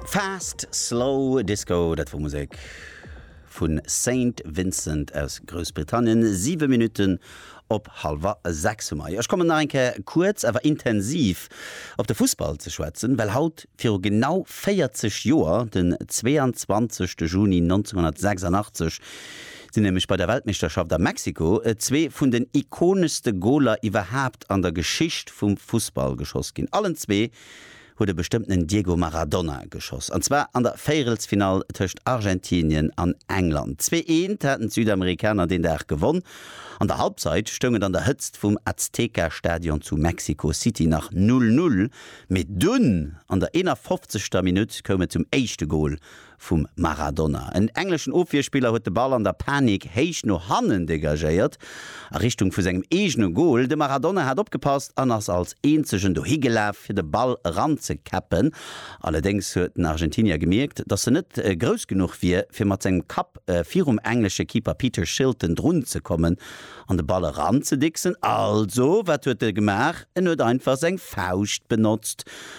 Fast Slow Disco, dat wor Musek vun Saint Vincent aus Groussbritannien. 7 Minuten op halwer 6 hu mer. Ech kommen nach eng Kéier kuerz awer intensiv op de Fussball ze schwätzen, well haut viru genau 40 Joer, den 22 Juni 1986, sinn nämlech bei der Weltmeeschterschaft a Mexiko zwee vun den ikoneschste Goler iwwerhaapt an der Geschicht vum Fussball geschoss ginn. Allen zwee huet e bestëmmtenen Diego Maradona geschoss, an zwar an der Véierelsfinall tëscht Argentinien an England. Zwee eent haten d'Südamerikaner deen Dag gewonn. An der Halbzeit stoung et an der Hëtzt vum Azteca-Stadion zu Mexico City nach Null-Null, mee dunn an der 51. Minutt koum et zum éischte Gol vum Maradona. En engleschen Ofwierspiller huet de Ball an der Panik héich no hannen degagéiert, a Richtung vu sengem eegene Gol. De Maradona hat opgepasst an ass als eenzegen dohigelaf fir de Ball eranzekäppen. Allerdéngs huet den Argentinier gemierkt, datt en net grouss genuch wier fir mat sengem Kapp virum englesche Keeper Peter Shilton drunzekommen an de Ball eranzedicksen. Also wat huet e gemaach? En huet einfach seng Fauscht benotzt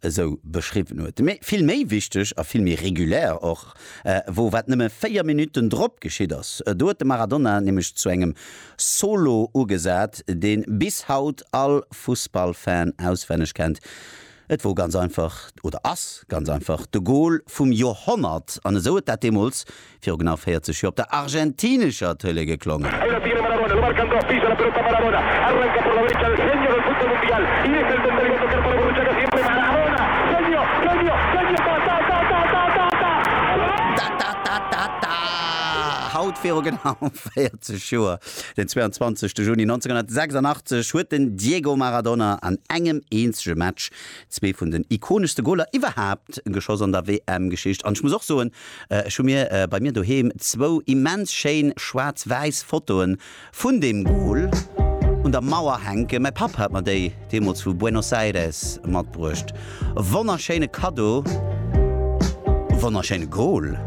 esou beschriwwen huet, mee vill méi wichteg a vill méi regulär och wor, wat nëmme 4 Minutten drop geschitt ass. Do huet de Maradona nämlech zu engem Solo ugesat, deen bis haut all Fussballfan auswenneg kennt. Et wor ganz einfach, oder ass ganz einfach, de Gol vum Joerhonnert an esou huet dat deemools Viru genau 40 Joer op der argentinescher Tëlee geklongen. Haut viru genau 40 Joer, den 22 Juni 1986, huet den Diego Maradona an engem eenzege Match zwee vun den ikoneschste Goler iwwerhaapt geschoss an der WM-Geschicht. An ech muss och soen, Ech hu mir bei mir doheem zwou immens schéin schwaarz-wäiss Fotoen vun deem Goal un der Mauer hänken. Mäi Papp hat mer déi deemools vu Buenos Aires matbruecht. Wonnerschéine Kaddo, wonnerschéine Goal.